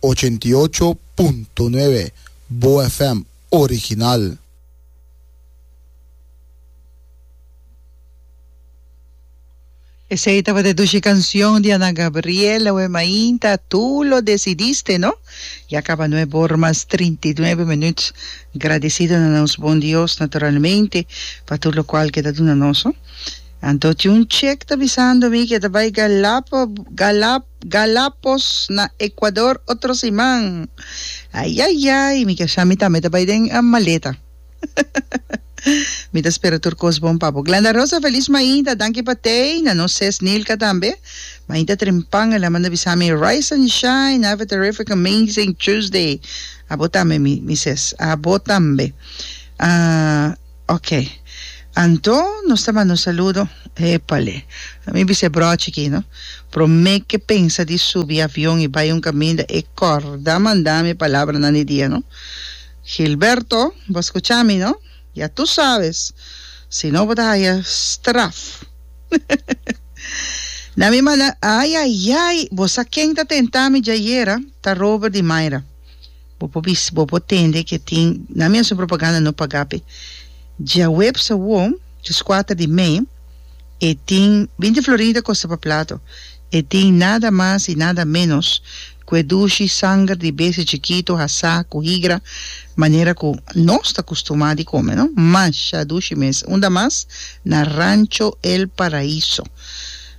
Ochenta i ocho punto nuebe Bo FM original. Esei tabata dushi cancion di Ana Gabriel, Awe Mainta, Tu lo decidiste, no? Ya caba nuebe or mas trinta i nuebe minuut. Gradecido na nos bon Dios, naturalmente, pa tur locual ke ta duna nos, no? Anto tin un chek ta bisando mi ke ta bai Galapo Galap Galapos na Ekuador otro siman. Ayayay mi kesha mi tambe ta bai den maleta. Mi ta spera tur kos bon papo. Glenda Rosa Feliz Mainta danki pa tei na nos ses Nilka tambe. Mainta Trimpanga el a manda bisa mi rise and shine have a terrific amazing Tuesday. Abo tambe mi mi ses abo tambe. Ah Ok. Anto nos ta manda un saludo. Epale. A mi bisa e brochi aki, no. Prome ke pensa di subi avion i bai un kaminda e korda manda mi palabranan di dia, no. Gilberto, bo a skucha mi, no. Ya tu sabes. Si no bo ta haya straf. Na mi manda, Ayayay! Bo sa ken ta tenta mi djayera? Ta Robert di Mayra. Bo por bisí, bo por tende ke tin nan mesun propaganda no pagá p'e. Djaweps awor, ris kuater di mei, e tin binti florin ta kosta pa plato. E tin nada mas i nada ménos ku e dushi sanger di besti chikitu hasá ku higra manera ku nos ta kustumá di kome, no. Masha dushi mes! Unda mas? Na Rancho El Paraíso.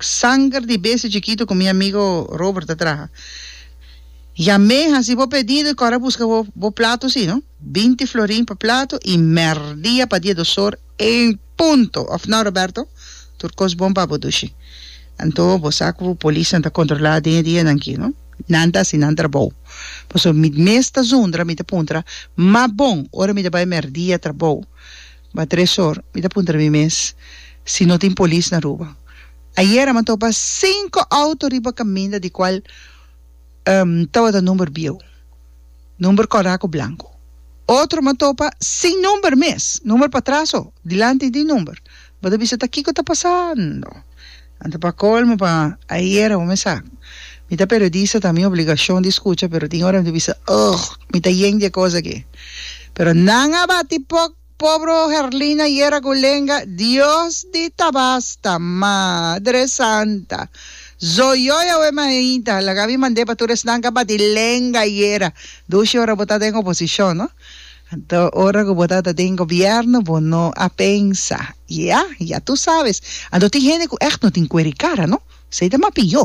Sanger di bestia chikitu ku mi amigo Robert ta traha. Ya me hasi bo pedido i kòrè a buska bo bo plato si no. Binti florin pa plato i mèrdia pa dia dos or en punto, òf nò Roberto? Tur kos bon pa bo dushi. Anto bo sa ku polisnan ta kontrolá den e dianan aki no. Nan ta hasi nan trabou. Pasobra mi mes ta zundra, mi ta puntra, M'a bon, ora mi ta bai mèrdia trabou? Ba tres or, mi ta puntra mi mes si no tin polis na Aruba. Ayera mi topa cinco auto riba caminda di cual um tabata number bieu, number cora cu blanco. Otro mi topa sin number mes, number pa tras oh, dilanti tin number. Bo ta bisa ta kico ta pasando? Anto pa colmo pa ayer awor mesa mi ta periodista ta mi obligacion di scucha pero tin ora mi ta bisa ugh mi ta yen dje cos aki pero nan a bati poc pobre Herlina ayer a gulenga Dios di tabasta madre santa zoyoy awe mahinta laga mi mande pa tur esnan cu a bati lenga ayer dushi ora bo ta den oposicion no. Anto ora ku bo ta ta den gobièrnu bo no a pensa, Ya, ya tu sabes. Anto tin hende ku ègt no tin kuer i kara, no? Esei ta mapio.